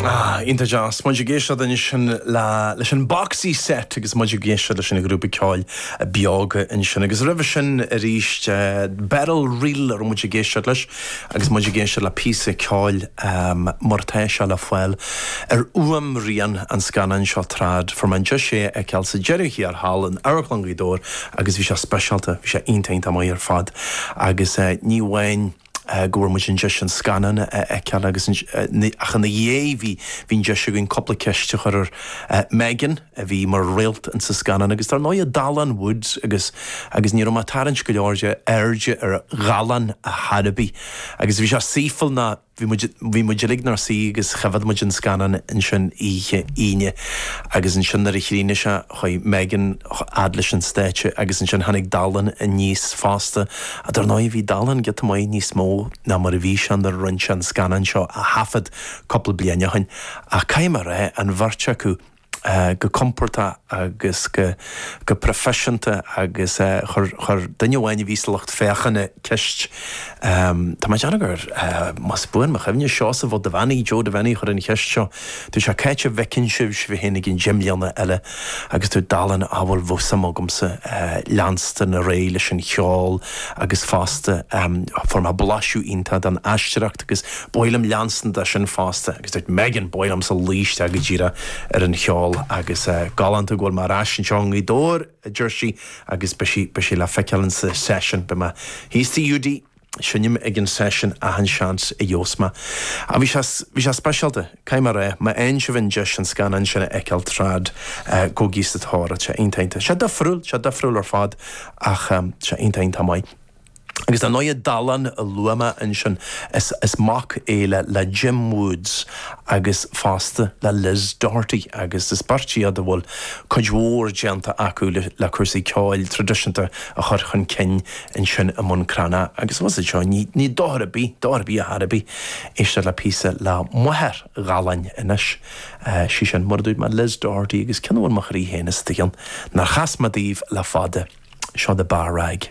Ah, iontach deas. Muid ag éisteacht ansin le, leis an Boxy Set agus muid ag éisteacht leis an ghrúpa ceoil Beoga ansin. Agus roimhe sin arís eh, Beryl Reel a raibh muid ag éisteacht leis agus muid ag éisteacht le píosa ceoil ehm, mar tá sé le fáil ar fhuaimrian an scannáin seo Trad fuair mé an deis é a fheiceáil sa deireadh thiar thall in Amharclann Ghaoth Dobhair agus bhí sé speisialta, bhí sé iontach iontach maith ar fad. Agus eh, ní amháin. go bhfuair muid an deis an scannán a fheiceáil agus ach ina dhiaidh bhí an deis againn cúpla ceist a chur ar Megan a bhí mar réalt in sa scannán agus dar ndóigh Dallán Woods agus agus ní raibh mé ag tarraingt go leor de airde ar Dhallán ar chor ar bith agus bhí sé saoithiúil ná bhí muid bhí muid uilig inár suí agus choimhéad muid an scannán ansin oíche Aoine agus ansin nuair a chríochnaigh sé chuaigh Megan a fhad leis an stáitse agus ansin tháinig Dallán aníos fosta A Dar ndóigh, bhí Dallán giota maith níos mó ná mar a bhí sé nuair a rinne sé an scannán seo a thaifead cúpla bliain ó shin. Ach caithfidh mé a rá, an bheirt acu, go compordach agus go proifisiúnta agus chuir duine amháin a bhí sa lucht féachana ceist, tá mé ag déanamh gur, más buan mo chuimhne, Seosamh Ó Duibheannaigh, Joe Devenney, a chuir an cheist seo, Dúirt sé cá háit a bhfeiceann sibh sibh féin i gcionn deich mbliana eile agus dúirt Dallán bhuel bheadh suim agamsa leanstan ar aghaidh leis an cheol agus fosta fuair mé blaiseadh iontach den aisteoireacht agus ba mhaith liom leanstan leis sin fosta agus dúirt Megan ba mhaith liomsa luí isteach go díreach ar an cheol agus galánta go bhfuil mé ar ais anseo i nGaoth Dobhair a deir sí agus beidh sí beidh sí le feiceáil ins an seisiún beidh mé thíos tigh Hiúdaí Seinnim ag an seisiún achan seans a gheobhas mé. Ach bhí sé, bhí sé speisialta, caithfidh mé a rá. Má fhaigheann sibh an deis an scannán sin a fheiceáil, Trad, gabhaigí sa tóir air. Sé iontach iontach. Sé difriúil, sé difriúil ar fad ach sé iontach iontach maith. Agus dar ndóigh Dallán a luaigh mé ansin, is, is mac é le, le Jim Woods agus fosta le Liz Doherty agus is beirt iad a bhfuil cuid mhór déanta acu le, le cúrsaí ceoil traidisiúnta a chur chun cinn ansin i mBun Cranncha agus anuas anseo. Ní dochar ar bith, dochar ar bith ar chor ar bith, éisteacht le píosa le máthair Dhalláin anois. Sí sin, mar a dúirt mé, Liz Doherty agus ceann a bhfuil mo chroí féin istigh ann nár chas mé daoibh le fada, seo The Bar Rag.